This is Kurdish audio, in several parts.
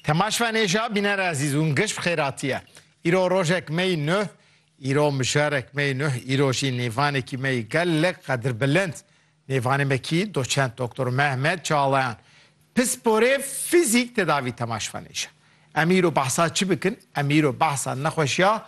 Temaşvanê ja bîner ezîz û giş bi xêratî ye. Îro rojek mey nuh, îro mijarek mey nuh, îro jî nêvanekî mey gelek qedirbilind. Nêvanê me kî doçent Doktor Mehmet Çağlayan. Pisporê fîzîk tedavî temaşvanê ja. Em îro behsa çi bikin? Em îro behsa nexweşiya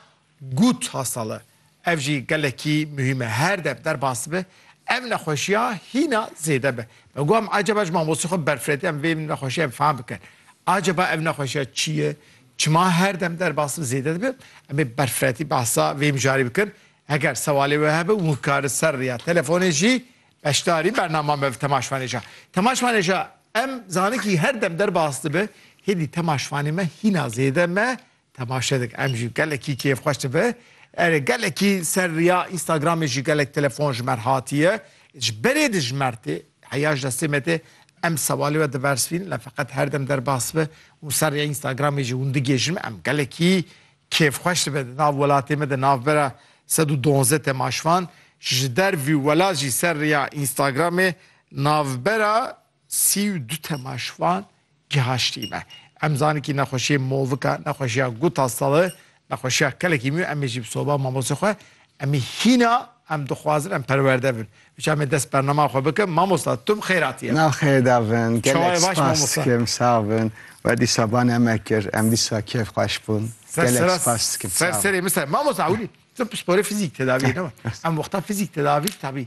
Got Hasale, Ev jî gelekî muhîm e. Her dev derbas bibe, ev nexweşiya hîna zêde be. Me got em acaba ji mamostê xwe berfiretiye em vê nexweşiyê em fehm bikin. Acaba ev nexweşiya çi ye? Çima her dem derbas bibe zêde dibe? Em ê berfiretî behsa vê mijarê bikin. Heger sewalê we hebe û ka li ser riya telefonê jî beşdarî bernama me bi Tema Şvanêja. Tema Şvanêja, Em zanikî her dem derbas dibe, hêdî tema şvanê me hîna zêde me Temaşe dik em jî gelekî kêfxweş dibe. Erê gelekî ser riya Instagramê jî gelek telefon ji mer hatiye. Ji berê dijmer tê. Heya ji destê me tê. Em sewalê we dibersivînin lê feqet her dem derbas dibe û ser riya Instagramê jî hûn digihêjin. Em gelekî kêfxweş dibe. Di nav welatê me de navbera sed û duwazdeh temaşvan ji dervî welat jî ser riya Instagramê navbera Sî û du temaşvan gihaştî me. Em zanekî nexweşiyê movika, nexweşiya guta sali, nexweşiya kelekî mî û em ê jî bi soba mamostê xwe em ê hîna em dixwazin em perwerde bin. Ji em ê dest bernama xwe bikin. Mamosta tu bi xêr hatiyê. Nav xêr da bin. Gelek spas dikim. Sağ bin. We dîsa ba ne me kir. Em dîsa kêf xweş bûn. Gelek spas dikim. Ser serê min ser. Mamosta ewilî tu bi sporê fizîk tedaviyê ne we. Em wexta fizîk tedavî tabî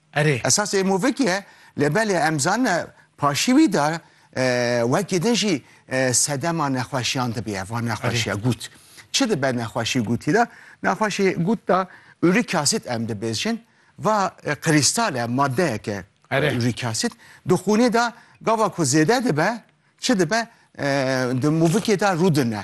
Erê. Esasê Movik ye, lê belê em zanine paşî wî de wekî din jî sedema nexweşiyan dibiye va nexweşiya gût. Çi dibe nexweşî gûtî de? Nexweşî gût de uric acid em dibêjin va krîstal e maddeyek e uric acid di xûnê de gava ku zêde dibe çi dibe di movikê de rûdine.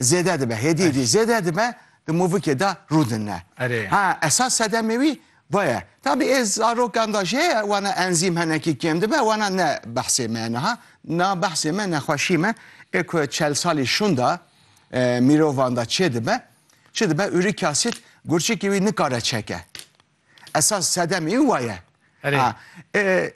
Zêde dibe, hêdî hêdî zêde dibe di movikê de rûdinne. Erê. Ha esas sedemê wî vaye. Tabî ê zarokan da jê wana enzîm henekî kêm dibe wana ne behsê me niha. Na behsê me nexweşî me ê ku çel salî şûnda mîrovan da çêdibe çi dibe urîk asîd gurçikê wî nikare çeke. Esas sedem ê wa ye. Erê. Ha, e,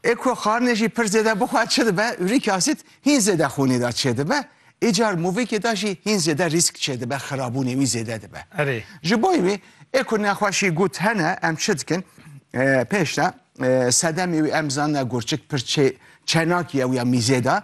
ê ku xarine jî pir zêde bixwe çi dibe, urîk asit hîn zêde xûnê de çêdibe, îcar movîkê de jî hîn zêde rîsk çêdibe, xirabûnê wî zêde dibe. Erê. Ji bo wî ê ku nexweşî gut hene em çi dikin? E, pêş de e, sedemê wî em zanine gurçik pir çê çenakî ye wî ya mîzê de,